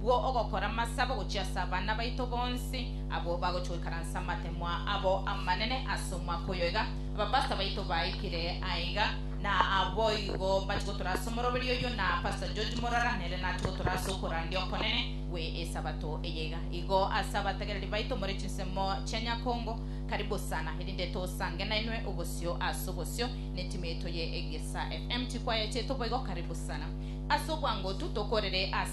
bwo ogokora amasabo gochia ase abana baito bonsi abwo bagochia goikaransa amatemo abo amanene ase omwaka oyo iga abapastor baito baikire aiga, na aboigo bachia gotura ase omoroberio oyio, na Pastor George Morara nere nachia gotura ase okorandia okonene gwe esabato eye iga. Igo ase abategereri baito more chinsemo chia Nyakongo, karibu sana erinde tosange nainwe obosio ase obosio netimu yaito ye Egesa FM. Chikwaya chiaito boigo karibu sana. Ase obwangotu tokorere ase.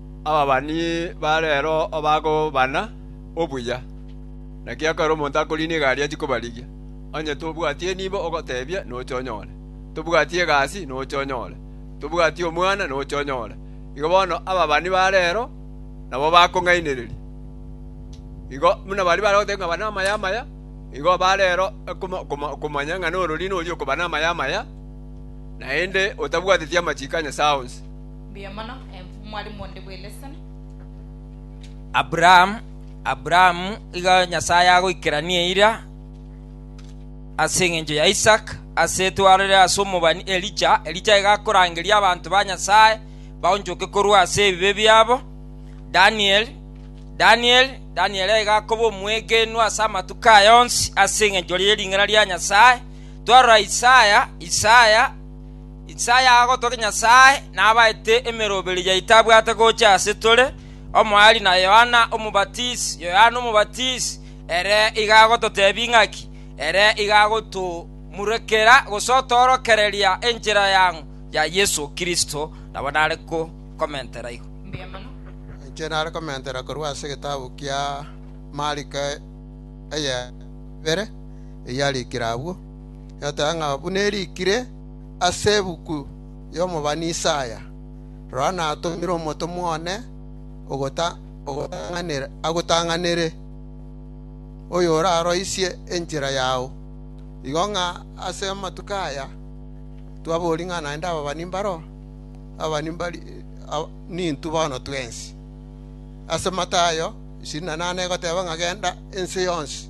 Ababani ba reero obagobana obuya, naki ekero omonto akoriina egari achie kobarigia, onye tobwati enibo ogotebia noche onyore, tobwati egasi noche onyore, tobwati omwana noche onyore. Igo bono ababani ba reero nabo bakong'ainereria. Igo buna baria bare goteba ng'a bana amaya amaya, igo ba reero okomanya ng'a nororina oria okoba namaya amaya, naende otabwateti amachiko a Nyasae onsi. Mbuya mono, eh, omwalimu onde bw'eleseni. Abraham, Abraham iga Nyasae agoikerania eira ase engencho ya Isaac, ase etwarire ase omobani Elija, Elija iga akorangeria abanto ba Nyasae baonchoke korwa ase ebibe biabo. Daniel, Daniel, Daniel iga akoba omwegenwa ase amatuko aya onsi ase engencho ye ring'ana ria Nyasae. Twarora Isaya, Isaya Isaya agotogia Nyasae nabaete emeroberi yaye etabwate gocha ase tore, omoerio na Yohana Omobatisi. Yohana Omobatisi ere iga agototebia ing'aki, ere iga agotomurekera gose otoorokereria enchera yang'u ya Yeso Kristo, nabo nare komentera igo. Inche nare komentera korwa ase egetabu kia Mariko eye ya kabere, eyarikire agwo. egoteeba ng'a buna erikire ase ebuku y'omobani Isaya, Rora, natomire omotomwa one agotang'anere, oyoraroisie enchera yao. Igo ng'a ase amatuko aya twaboria ng'a naende ababani mbaro? Ababani nintwe bono twensi. Ase Matayo isini na nane egoteeba ng'a genda ense yonsi.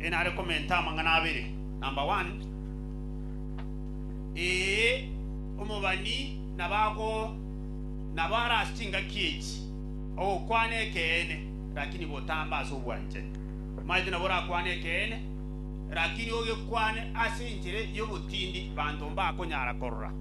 Ee nare komenta amang'ana abere. Number one, Ee, omobani nabo ago, nabo are ase chingaki echi, ogokwana ekeene, rakini botambe ase obwanchani. Omaete nabo orakwane ekeene, rakini ogekwane ase enchera y'obotindi banto mbakonyara korora.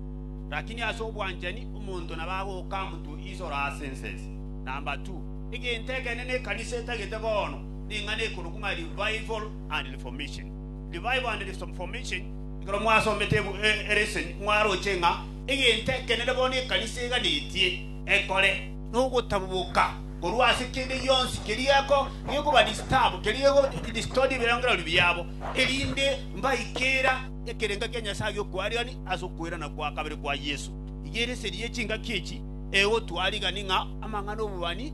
Rakini ase obwanchani omonto nabo agoka amutu isore ase ensese. Number two, egento ekenene ekanisa etagete bono, ning'ana ekorokwa ng'a Revival and Reformation, Revival and Reformation. Ekero mwasomete Eresen mwaroche ng'a egento ekenene bono ekanisa eganetie ekore nogotaboboka korwa ase kende gionsi keria eko gekoba disturb, keria geko distort ebirengererio biabo, erinde mbaikera ekerengo kia Nyasaye gi'okwariani ase okoirana kwa kabere kwa Yeso. Iga Eresen ye chingaki echi egotwariga ning'a amang'ana 'obobani,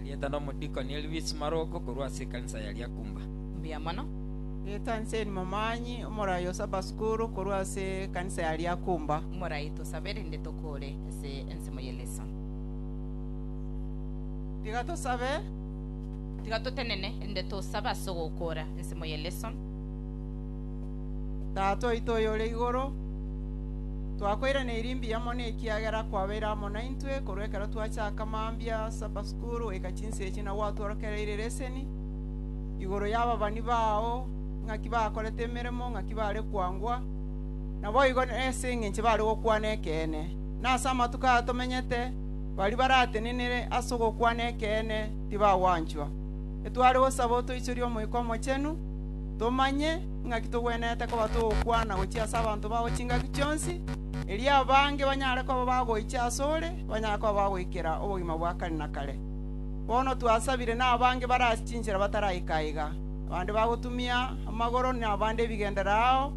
Erieta nomodikoni Elvis Maroko korwa ase ekanisa ya Lyakumba. Mbuya mono. Erieta Nseni Momanyi, omorai o Saba Sukuru korwa ase ekanisa ya Lyakumba. Morai tosabe rende tokoore ase ensemo ye Leso. Tiga tosabe. Tiga totenene rende tosabe ase ogokoora ensemo ye Leso. Tata oito oyore igoro, twakoiraneiri mbuya mono ekiagera kwabeire amo naintwe korwa ekero twachaka mambia Supper School goika chinsa echi na gwatworokereire leseni igoro y'ababani bao, ng'aki bakorete emeremo, ng'aki bare kwangwa, naboigo ase engencho bare gokwana ekeene. Na ase amatuko aya tomenyete, baria baratenenere ase ogokwana ekeene tibagwanchwa. Etware gosaba otoichorie Omoika Omochenu, tomanye Ing'aki togwenerete koba togokwana gochia ase abanto bao chingaki chionsi, erio abange banyare koba bagoicha asore, banyare koba bagoikera obogima bwa kare na kare. Bono twasabire nabange bare ase chinchera bataraika aiga, abande bagotumia amagoro na abande ebigendera ao,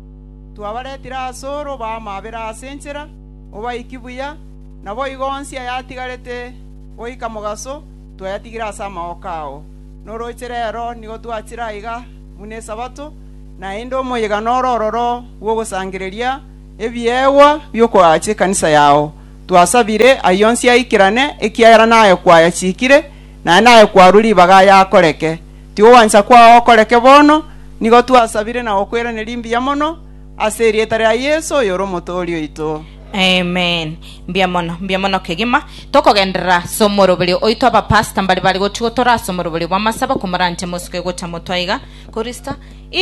twabaretire asore obaamabere ase enchera, obaiki buya, naboigo onsi ayatigarete goika mogaso twayatigire ase amaooko ao. Noroche rero nigo twachire aiga, buna Esabato, naende omoyega noro ororo bw'ogosangereria ebiegwa bi'okoagacha ekanisa yao. Twasabire ayio onsi aikerane, ekiagera naye kwayachikire, naye naye kwarwa ribaga aye akoreke. Tigogwancha kwao okoreke bono, nigo twasabire na gokweraneria mbuya mono, ase erieta ria Yeso, oyore Omotooria oito. Amen. Mbuya mono, mbuya mono kegima. Tokogenderera ase omoroberio oito abapasta mbare bare gochi gotora ase omoroberio bw'amasabo komoranche mosoke gocha motwaiga korista. I